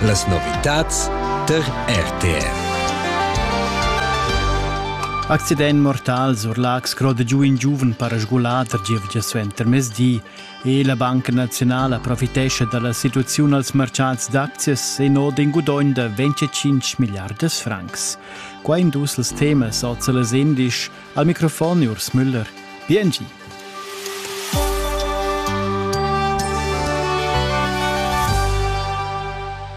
Las novitads tar RTR. Accident mortal sur Lax croda giu in giuven para sgulà tar gievgia suenter mezdi e la Banca Nazionale profitescha dalla situaziun als mercats d'aczias e no den gudogn da 25 milliardas francs. Qua in dus els temas oza las indisch Al microfon Urs Müller. Biengi.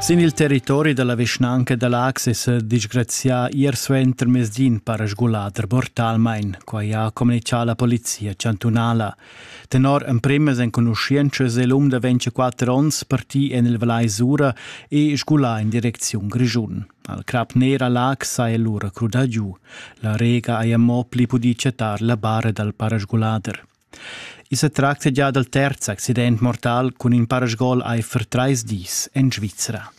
Sin il territori dalla vischnanca da Lax è disgrazià ier suenter mesdin para sgulader mortalmain, quai ha communicà la polizia chantunala. Tenor emprimas enconuschientschas è l'um da 24 onns partì en il Valais Sura e sgulà in direcziun Grischun. Al crap ner a Lac saja lura crudà giu. La rega haja mo pli pudì chattar la bara dal parasgulader. I sa tracta gia dal terz accident mortal cun in parasgol aifer trais dis en Svizra.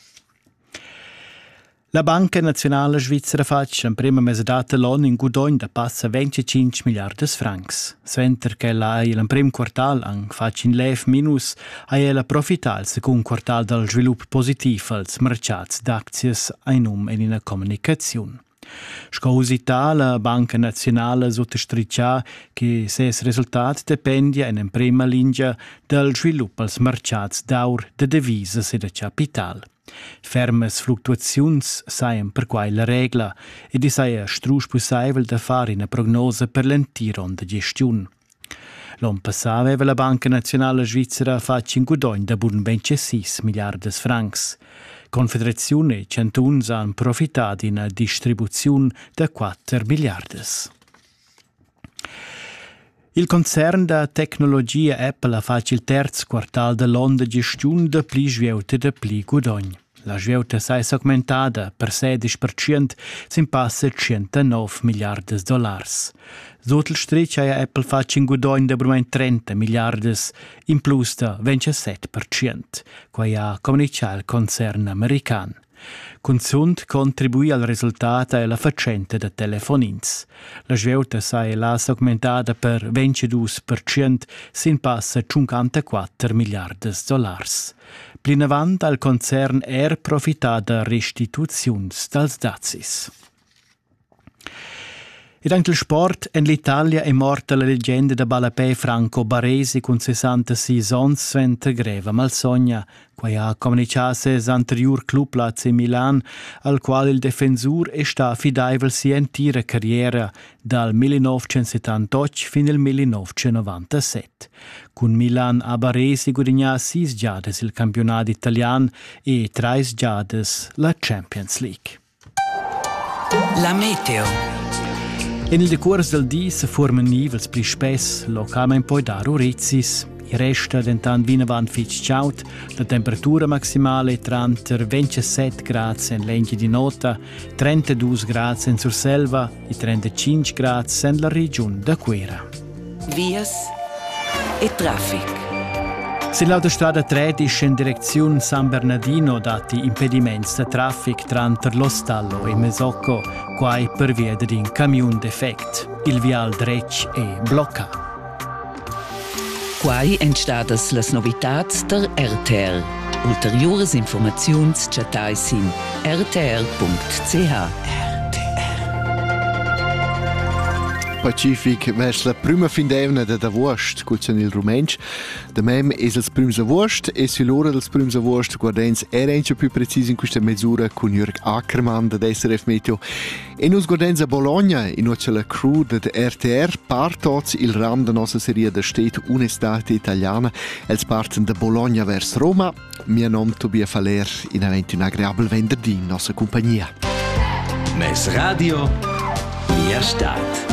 La Banca Nazionala Svizra fatg l'emprima mesadata l'on in gudogn da passa 25 miliardas francs. Suenter ch'ella ha il emprim quartal anc fatg in lev minus ha ella profità al secund quartal dal svilup positiv als merchats d'aczias ein um en ina communicaziun. Sco usità la Banca Nazionale suttostrichà che ses resultat dependia in emprema linea dal svilup als merchats d'aur da devisas e da capital. Fermas fluctuaziuns sajan perquai la regla ed i saja strusch pussaivel da far ina prognosa per l'entir onn da gestiun. L'on passà aveva la Banca naziunala svizra fatg in gudogn da bun ben 6 milliardas francs. Confederaziun e chantuns han profità d'ina distribuziun da 4 milliardas. Il concern da tecnologia Apple ha fatg il terz quartal da l'onn da gestiun da pli svieuta da pli gudogn. La svieuta sai s'augmentada per sedisch percent sin passa tschentanov milliardas dollars. Sut il strich haja Apple fatg in gudogn da brumain 30 milliardas, in plus da 27 percent. Quai ha communitgà il concern american. Cunzunt contribui al resultat è la fatschenta da telefonins. La svieuta sai la s'augmentada per 22% sin passa 54 milliardas dollars. Plinavant ha il concern er profità da restituziuns dals dazis. Ed anche il sport en l'Italia è morta la legenda da ballapè Franco Baresi cun 66 onns suenter greva malsogna. Quai ha communichà ses anteriur club l'AC Milan, al qual il defensur è stà affidaivel sia entira carriera, dal 1978 fin al 1997. Cun Milan a Baresi gudignà sis giadas il campiunat italian e trais giadas la Champions League. La meteo. En il decurs dal di se forman nivels pli spess, localment poi dar orezis. I resta dentant vinavant fitg chaud, la temperatura maximale tranter 27 grads en l'engi di nota, 32 grads en Surselva e 35 grads en la regiun da Cuera. Vias e traffic. Se l'autostrada 13 in direcziun San Bernardino datti impediments da traffic tranter Lostallo e Mesocco, quai per via d'in camiun defect. Il vial dretg è blocca. Quai èn stadas las novitads tar RTL. Ulteriuras informaziuns chattai sin rtr.ch. Pacific mess la prima fin d'evna dad avuost cuzan il rumentsch. Da mem es els prüms avuost e sü l'ora dels prüms avuost guardens era incha più precis in questa mesura cun Jörg Ackermann da SRF Meteo E nus godenza Bologna in noce la crew dad RTR partots il ram da nossa seria da stet Un'estate italiana els parten da Bologna vers Roma. Mio nom Tobias Faller in avanti un agreabel venderdi in nossa compagnia. Mes radio, mia stat.